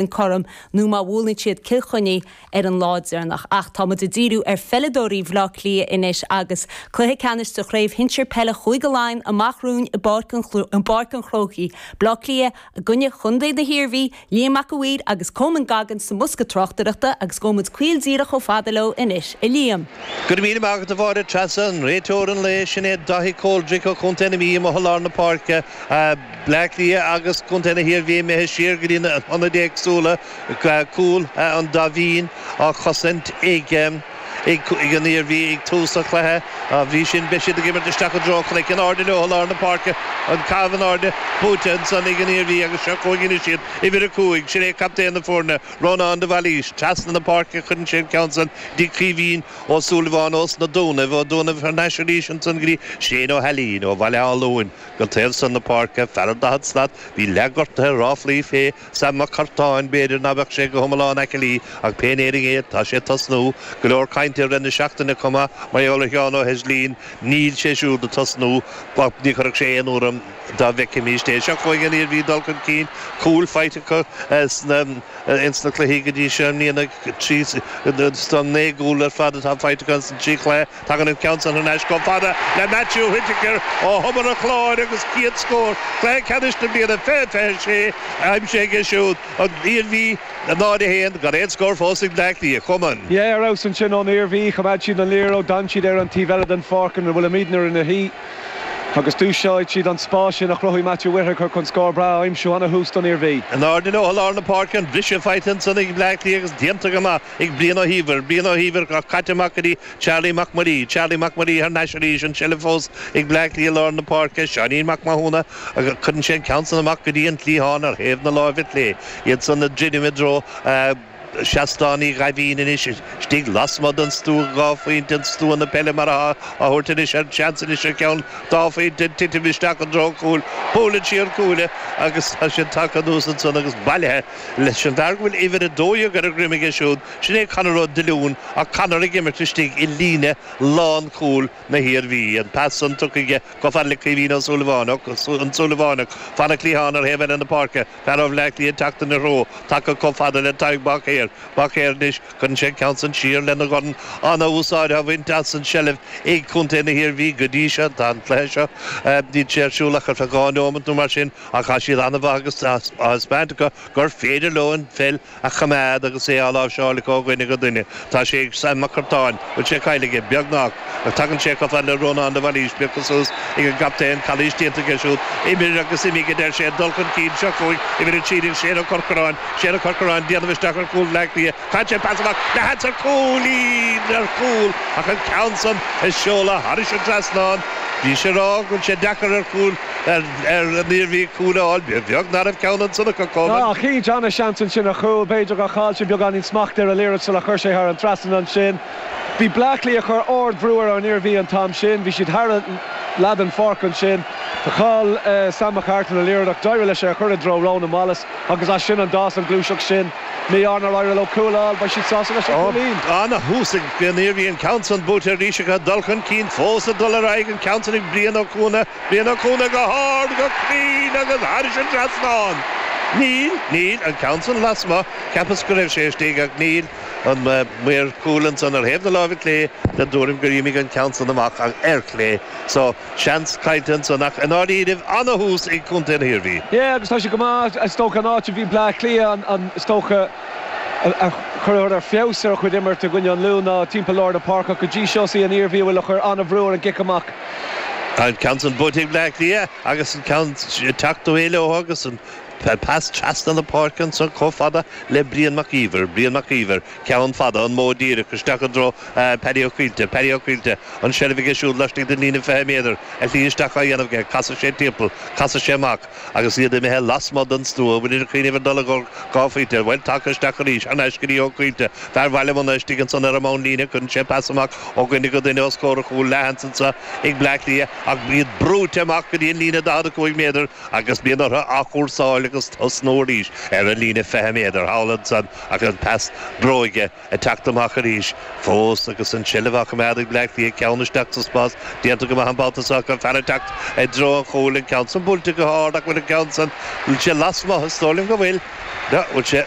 an corn nó má bhuaileann siad Cill Chainnigh ar an lá deireanach ach tá muid ag díriú ar pheileadóirí Bhaile Átha Cliath anois agus cluiche ceannais de Chraobh Shinsir Peile Chúige Laighean amach romhainn i bPáirc an Chrócaigh, Baile Átha Cliath i gcoinne chontae na hIarmhí, Liam Mac a' Mhaoir agus Coman Goggins sa mbosca tráchtaireachta agus gabhfaidh muid caol díreach chomh fada leo anois, a Liam! Go raibh míle maith agat a Mháire Treasa, an réiteoir an lae, sin é Daithí Coldrick ó Chontae na Mí amuigh i lár na páirce, Bleá Cliath agus Contae na hIarmhí imithe siar go dtí na hionaid éagsúla, cúl an Daimhín á chosaint ag an Iarmhí ag tús an chluiche. Dá bhrí sin, beidh siad ag imirt isteach i dtreo an Chnoic. In airde leo i lár na páirce. An Caitheamh in Airde buaite ansan ag an Iarmhí agus seo chugainn anois iad, uimhir 5, sin é captaen na foirne, Rónán de Bhailís. Trasna na páirce a chuireann sé an ceann san go dtí Caoimhín Ó Súilleabháin ós na Dúnaibh, ó Dúnaibh thar n-ais arís ansan go dtí Shane Ó hAilín ó Bhaile Átha Luain. Philip, go taobh san na páirce, fear an daichead slat, bhí leathghortaithe, ráflaí fé Sam Mac Curtáin, b'fhéidir ná beadh sé go hiomlán aicillí, ach pé in Éirinn é, tá sé ag tosnú. Go leor cainte i rith na seachtaine chomh maith, mar gheall ar Sheán Ó hEislín, níl sé siúd ag tosnú, ach ní chuirfeadh sé aon ionadh orm dá bhfeicfimíst é. Seo chugainn an Iarmhí ag dul chun cinn, cúil faighte acu ins na cluichí go dtí seo i mbliana, trí, so naoi gcúl ar fad atá faighte acu ins na trí chluiche, Tagann an ceann san thar n-ais chomh fada le Matthew Whittaker ó Thobar an Chláir agus chéad scór cluiche ceannais na bliana 20 26 á aimsiú aige siúd, an Iarmhí, 0-1, gan aon scór fós ag Bleá Cliath, a Choman. Yeah, ar fheabhas ansin ón Iarmhí. Choimeád siad an liathróid, d'fhan siad ar an taobh eile den pháirc ina bhfuil muidne inár suí agus d'úsáid siad an spás sin a chruthaigh Matthew Whittaker chun scór breá a aimsiú an-thús don Iarmhí. In airde leo i lár na páirce, an briseadh faighte ansan ag Bleá Cliath agus déanta go maith ag Brian Ó hÍomhair, Brian Ó hÍomhair á chaitheamh amach go dtí Charlie Mac Muirí, Charlie Mac Muirí thar n-ais arís, an tseilbh fós ag Bleá Cliath i lár na páirce, Seáinín Mac Mathúna, agus cuireann sé an ceann san amach go dtí an cliathán ar thaobh na láimhe chlé, iadsan ag druidim i dtreo Seastán Uí Dhaimhín anois, istigh lasmuigh den stua, dhá phointe den stua na peile mar atá á thabhairt anois air, seans anois ar cheann dhá phointe ag titim isteach i dtreo an chúil. Buaileann sí an cuaille agus tá sí tagtha anuas ansan agus bailithe leis an bhfear go bhfuil uimhir a dó dhéag ar a dhroim aige siúd, Sin é Conor Ó Díolúin, ach Conor ag imirt istigh i líne lánchúil na hIarmhí. An pas san tugtha aige chomh fada le Caoimhín Ó Súilleabháin, an Súilleabhánach, fan an chliatháin ar thaobh eile na páirce, fear ó Bhleá Cliath ag teacht ina threo, tagtha chomh fada le Tadhg Báicéir. Báicéir anois, cuireann sé an ceann san siar lena dhorn, an-úsáid á bhaint as an tseilbh ag Contae na hIarmhí go dtí seo, tá an cluiche seo, níl sé ar siúl ach ar feadh dhá neomat nó mar sin, ach tá siad an-mhaith agus tá taispeánta acu gur féidir leo an pheil a choimeád agus é á láimhseáil ó dhuine go duine. Tá sé ag Sam McCartan. Bhfuil sé caillte aige? Beagnach. Ach tagann sé chomh fada le Rónán de Bhailís, piocadh suas ag an gcaptaen, calaois déanta aige siúd, imir agus imigh a deir sé, dul chun cinn, seo chugainn uimhir a 13, Shane Ó Corcaráin, Shane Ó Corcaráin, déanamh isteach ar chúl Bhleá Cliath, chaith sé pas amach, iarracht ar chúilín! ar chúl! ach an ceann san seolta thairis an trasnán, bhí mise ag rá go bhfuil sé deacair ar chúil, Ar an Iarmhí cúl a fháil? Beag narbh ceann an tsonnac a codhlann. Ach thit an-seans ansin ar chúl. B'fhéidir gur chaill sé beagáinín smachta ar an liathróid sular chuir sé í thar an trasnan ansin. Bhí Bleá Cliath ag cur ard-bhrú ar an Iarmhí an t-am sin. Bhí siad thar leath den pháirc ansin. Chaill Sam McCartan an liathróid ach d'éirigh leis é a chur i dtreo Ronan Wallace agus as sin a d'fhás an gluaiseacht sin. In ainneoin nár éirigh leo cúl a fháil, beidh siad sásta leis an gcúilín. Ana-thús ag an Iarmhí an ceann san buailte arís ach an dul chun cinn fós ag dul ar aghaidh an ceann san ag Brian Ó Cuana. Brian Ó Cuana go hard, go cruinn agus thairis an trasnán. Níl, níl, an ceann san lasmuigh, cheapas go raibh sé istigh ach níl, an maor cúil ansan ar thaobh na láimhe clé den tuairim gur imigh an ceann san amach ach ar chlé so seans caillte ansan ach i ndáiríribh ana-thús ag Contae na hIarmhí. Yeah, agus tá sé go maith, is dócha an áit a bhí Bleá Cliath an, is dócha, ag cur feabhas ar a chuid imirt i gcoinne an Lú ná timpeall lár na páirce ach go dtí seo is í an Iarmhí a bhfuil ag cur an-bhrú ar an gcic amach. An ceann san buaite ag Bleá Cliath agus an ceann ag teacht abhaile leo agus an pas trasna na páirce ansan comh fada le Brian Mac Íomhair, Brian Mac Íomhair, ceann fada, an modh díreach isteach i dtreo Paddy Ó Caoilte, Paddy Ó Caoilte, an seilbh aige siúd laistigh den líne 20 méadar, a shlí isteach á dhéanamh aige, casadh sé timpeall, casadh sé amach. Agus iad imithe lasmuigh den stua, iarraidh cúnamh ar dul ag fáil, an bhfuil, teacht isteach arís, anois go dtí Ó Caoilte, fear Bhaile Munna, istigh ansan ar an mbonn líne, cuireann sé pas amach ó dhuine go duine os comhair an chúil leath ansan ag Bleá Cliath, ach bhíodar brúite amach go dtí an líne 45 méadar agus bíonn orthu athchúrsáil agus tosnú arís ar an líne 20 méadar thall ansan agus pas bróige Ag teacht amach arís. Fós agus an tseilbh á choimeád ag Bleá Cliath, ceann isteach sa spás. Déanta go maith an babhta seo. Ach fear ag teacht i dtreo an chúil. An ceann san buailte go hard. Ach bhfuil an ceann san? Níl sé lasmuigh. Is dóigh liom go bhfuil. Bhuel, bhfuil sé?